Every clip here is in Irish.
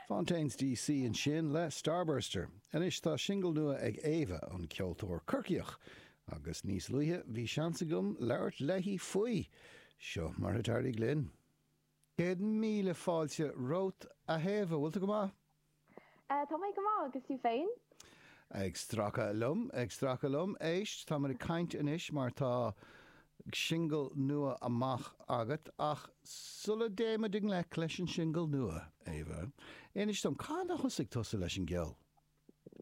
Fontaines D.C. ansin le Starburster. Anois tá singil nua ag Éabha, an ceoltóir Corcaíoch, agus níos luaithe bhí seans agam labhairt léi faoi. Seo mar a d'éirigh linn. Céad míle fáilte romhat, a Éabha, bhfuil tú go maith? Eh, tá mé go maith, agus tú féin? Ag stracadh liom, ag stracadh liom. Éist, táimid ag caint anois mar tá singil nua amach agat, ach sula dtéimid i ngleic leis an singil nua, Éabha, inis dom, cathain a thosaigh tusa leis an gceol?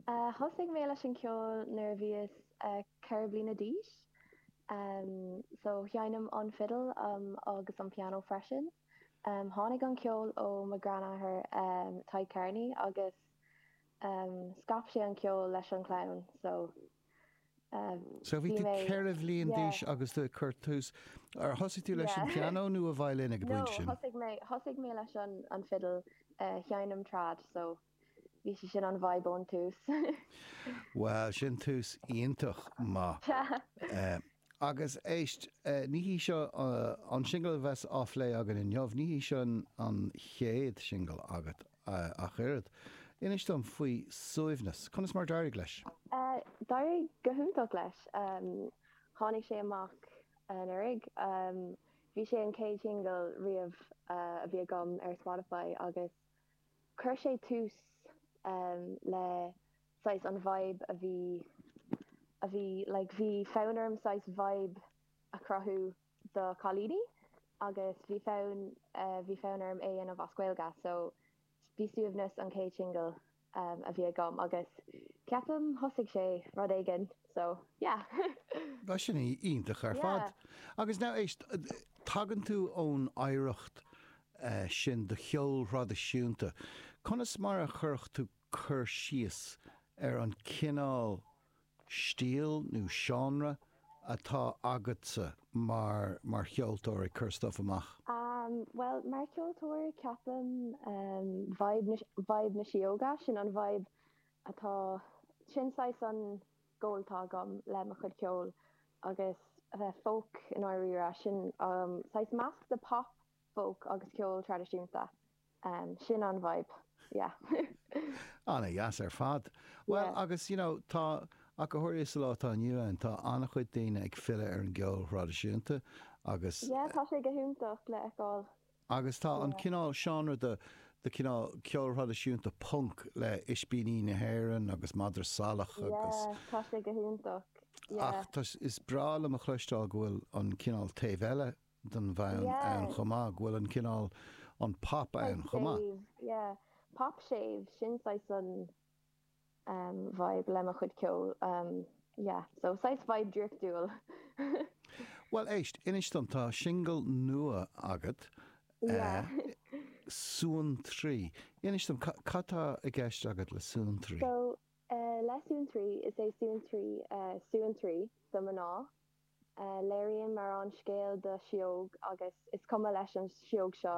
Eh, thosaigh mé leis an gceol nuair a bhíos eh ceithre bliana d'aois. Eh, so sheinn mé an fidil um agus an pianó freisin. Tháinig an ceol ó mo ghranathair Tadhg Kearney agus scaip sé an ceol leis an chlann so So bhí tú ceithre bhliain d'aois agus tú ag cur tús, ar thosaigh tú leis an pianó nó an veidhlín ag an bpointe sin? No, thosaigh mé leis an fiddle, sheinn mé trad so bhí sé sin an vibe ón tús. Bhuel, sin tús iontach maith. Sea. Agus éist, ní hé seo an singil a bheas á phlé againn inniu, ní hé seo an chéad singil agat ach oiread. Inis dom faoi Suaimhneas, conas mar d'éirigh leis? D'éirigh go hiontach leis. Tháinig sé amach anuraidh. Bhí sé an chéad shingil riamh a bhí agam ar Spotify agus Chuir sé tús le saghas an vibe a bhí, a bhí like bhí fonn orm saghas vibe a chruthú do chailíní agus bhí fonn, bhí fonn orm é a dhéanamh as Gaeilge so bhí Suaimhneas an chéad singil a bhí agam agus ceapaim thosaigh sé rud éigin so yeah. Bhuel sin iontach ar fad. Agus now éist, tagann tú ón oidhreacht sin do cheol traidisiúnta. Conas mar a chuirfeá cur síos ar an cineál stíl nó seánra atá agatsa mar, mar cheoltóir ag cur stuif amach? Bhuel, mar cheoltóir ceapaim vibe na, vibe na síóga, sin an vibe atá, sin saghas an goal atá agam le mo chuid ceoil agus a bheith folk i ndáiríre, sin saghas meascán de pop, Folk agus ceol traidisiúnta. Sin an vibe, yeah. Ana dheas ar fad. Bhuel agus you know tá, ach go háirithe sa lá atá inniu ann tá an-chuid daoine ag filleadh ar an gceol thraidisiúnta agus Yeah tá sé go hiontach le fheiceáil. Agus tá an cineál seánra de de cineál ceol thraidisiúnta punk le Ispíní na hÉireann agus Madra Salach agus Yeah tá sé go hiontach. Ach is breá liom a chloisteáil go bhfuil an cineál taobh eile den fhonn ann chomh maith, go bhfuil an cineál, an pop ann chomh maith. Séimh, yeah. Pop séimh, sin saghas an vibe le mo chuid ceoil. Yeah, so saghas vibe draíochtúil. Bhuel, éist, inis dom, tá singil nua agat, Suantraí. Inis dom, cad tá i gceist agat le Suantraí? So, le Suantraí, is é Suantraí Suantraí do mhná. Léiríonn an t-amhrán scéal de shióg agus is cuma leis an Sióg seo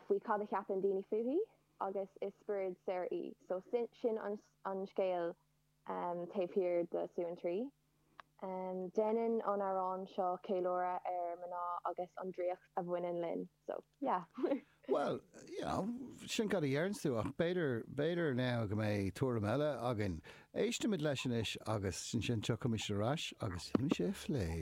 faoi cad a cheapann daoine fúithi agus is spiorad saor í so sin an scéal taobh thiar de Suantraí. Déanann an amhrán seo ceiliúradh ar mná agus an draíocht a bhaineann linn. so yeah. Bhuel, you know, sin cad a deireann tusa ach b'fhéidir, b'fhéidir now go mbeidh tuairim eile againn. Éistimid leis anois agus ansin tiocfaimid ar ais agus déanfaimid sé a phlé.